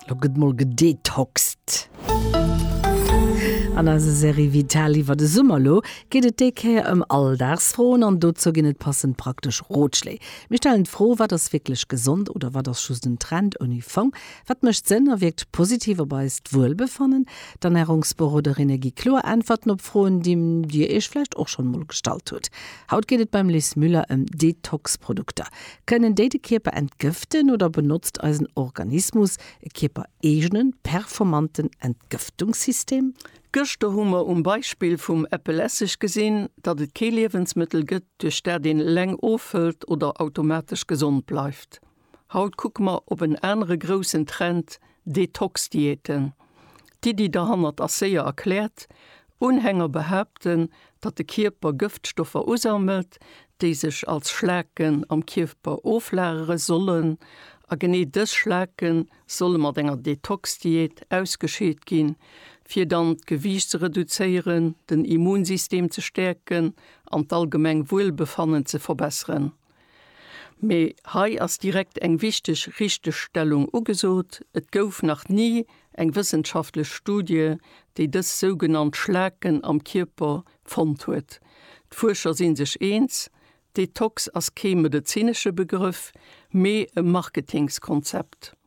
Lo gëtt mol gedetoxt! An eiser Serie Vital iwwer de Summer elo geet et déi Kéier ëm Alldagsfroen an dozou ginn et passend praktesch Rotschléi. Mir stellen d'Fro, Wat ass wierklech gesond oder wat ass just en Trend ouni Fong? Wat mécht Sënn a wierkt positiv op eist Wuelbefannen? D'Ernärungsberoderinne gi kloer Äntwerten op Froen, déi Dir Iech vläicht och schonn emol gestallt hutt. Haut geet et beim Liz Müller ëm Detox-Produkter. Kënnen déi de Kierper entgëften oder benotzt eisen Organismus e kierpereegenen, performanten Entgëftungssystem? Gëschter hu mer um Beispill vum Äppelesseg gesinn, datt et kee Liewensmëttel gëtt, duerch dat een eleng ofhëlt oder automatesch gesond bleift. Haut kucke mer op en anere groussen Trend, Detox-Diäten. D'Iddi derhannert ass séier erkläert, Unhänger behaapten, datt de Kierper Gëftstoffer usammelt, déi sech als Schlaken am Kierper oflagere sollen. A genee dës Schlake solle mat enger Detox-Diät ausgescheet ginn, fir dann d'Gewiicht ze reduzéieren, den Immunsystem ze stäerken an d'allgemeng Wuelbefannen ze verbesseren. Mee hei ass direkt eng wichteg Richtegstellung ugesot, Et gouf nach ni eng wëssenschaftlech Studie, déi dës sougenannt Schlaken am Kierper fonnt huet. D'Fuerscher si sech eens, Detox ass kee medezinesche Begrëff, mee e Marketingskonzept.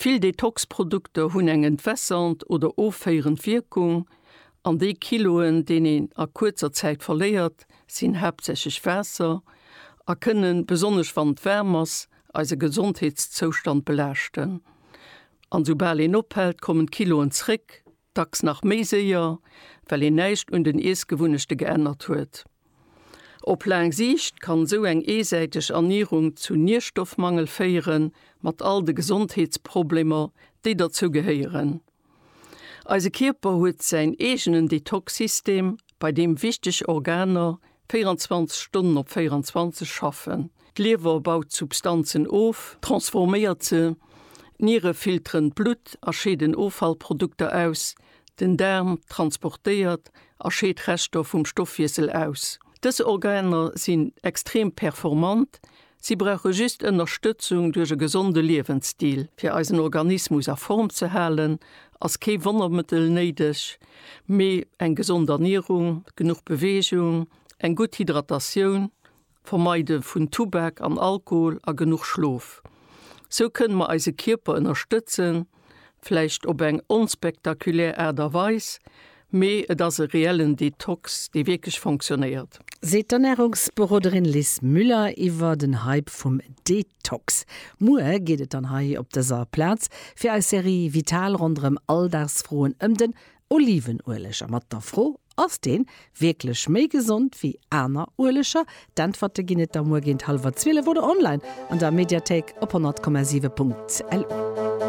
Vill Detox-Produkter hunn eng entwässend oder offéierend Wierkung, an déi Kiloen, deen een a kuerzer Zäit verléiert, sinn haaptsächlech Waasser a kënnen, besonnesch wann et waarm ass, eise Gesondheetszoustand belaaschten. An soubal een ophält, kommen d'Kiloen zréck. dacks nach méi séier, well een näischt un den Iessgewunnechte geännert huet. Op laang Siicht kann esou eng eesäiteg Ernierung zu Nierstoffmangel féieren, mat all de Gesondheetsproblemer, déi derzou gehéieren. Eise Kierper huet säin eegenen Detox-System, bei deem wichteg Organer 24 Stonnen op 24 schaffen. D'Liewer baut d'Substanzen of, transforméiert se, d'Niere filteren d'Blutt a scheeden Offallprodukter aus, den Daarm transportéiert a scheet Reschter vum Stoffwiessel aus. Dës Organer sinn extrem performant, Si brauche just Ënnerstëtzung duerch e gesonde Liewensstil. Fir eisen Organismus a Form ze halen, ass kee Wonnermëttel néideg, mee eng gesond Ernierung, genuch Beweegung, eng gutt Hydratatioun, Vermeide vun Tubak an Alkohol a genuch Schlof. Sou kënne mer eise Kierper ënnerstëtzen. vläicht op eng onspektakulär Aart a Weis, mee et ass e reellen Detox, dee wierklech fonctionéiert. Seet d'Ernärungsberoderin Liz Müller iwwer den Hype vum Detox. Muer geet et dann hei op dëser Plaz fir eis Serie Vital ronderëm Alldagsfroen ëm den Olivenueleg a mat der Fro, Ass deen wierklech méi gesond wéi aner Ueleger? D'Äntwerte ginn et da muer géint hallwer zwielef oder online an der Mediathéik op 100,7.lu.